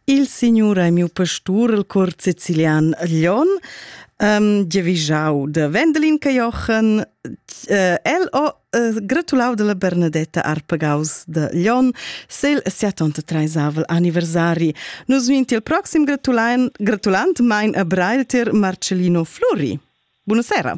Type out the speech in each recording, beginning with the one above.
Il signur ei miu pastur, il cor sicilian Glion, um, giavischau da Wendelin Cajochen. Uh, el ho uh, gratulau dalla Bernadetta Arpagaus da Glion sel siatonta treisavel anniversari. Nus vin il proxim gratulan, gratulant mein a Brailtir Marcellino Fluri. Buonasera.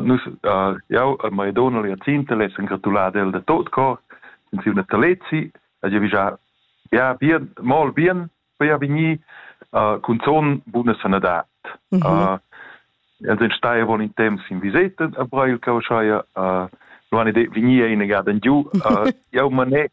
Nus, jau e ma donna Liazinta l'essan gratulada el da tot cor in siu natalezi e gli vezà ja bien, mal bien per vegnir cun zon buna sanadad. Mm -hmm. Els ein stai avon in temps in viseta a Brail Causchaia. Uh, non han ide vegni ina gada giu. Uh, jau manet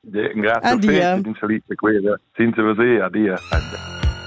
Grazie. Adia. Senza veser. Adia.